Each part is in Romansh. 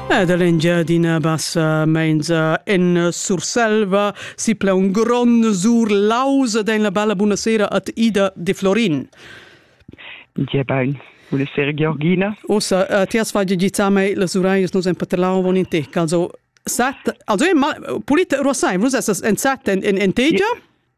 Ed l'Engiadina Bassa menza en Surselva sipla un grond sur lausa den la bella buonasera at Ida de Florin. Gia bain. Buonasera Georgina. Ossa, uh, ti has fatto gizzame la suraius nos en paterlau von in te. Also, sat, also, ma, pulit, Rosain, vus essas en sat en, en, en tegia? Yeah.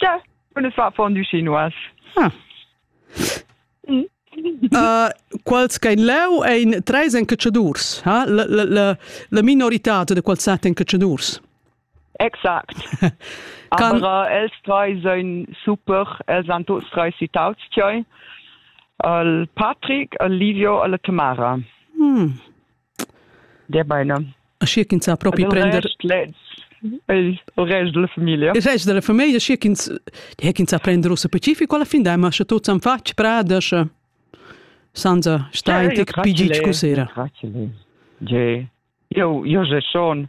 Ja, und es war von die Chinois. Ah. Uh, quals ch'ein leu ein treis encatschadurs, ha? La, la, la, la minoritad de quals sat encatschadurs. Exakt. Aber äh, els drei sind super, els han tots drei citaus tioi. El Patrick, el Livio, el Tamara. Hmm. Gebaina. Aschia ch'ins sa propi prender il rest della famiglia. Il rest della famiglia, schi ch'ins die ch'ins sa prender ussa pacifico alla fin dai, ma sche tuts han fatg prada, sche senza stai tic pigic cusera. Io io je schon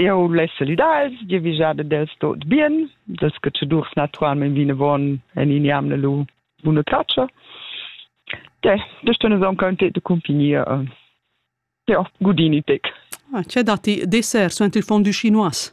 Eu l'he salüdà els, giavüschà dad els tuot bien, dels catschadurs natüralmaing vinavon e nin jamna lur buna chatscha. Deh, da stun aunc contenta da cumpagnir. Ja, gudini tec. Ah, c'è datti dessert su ent il fond du chinois?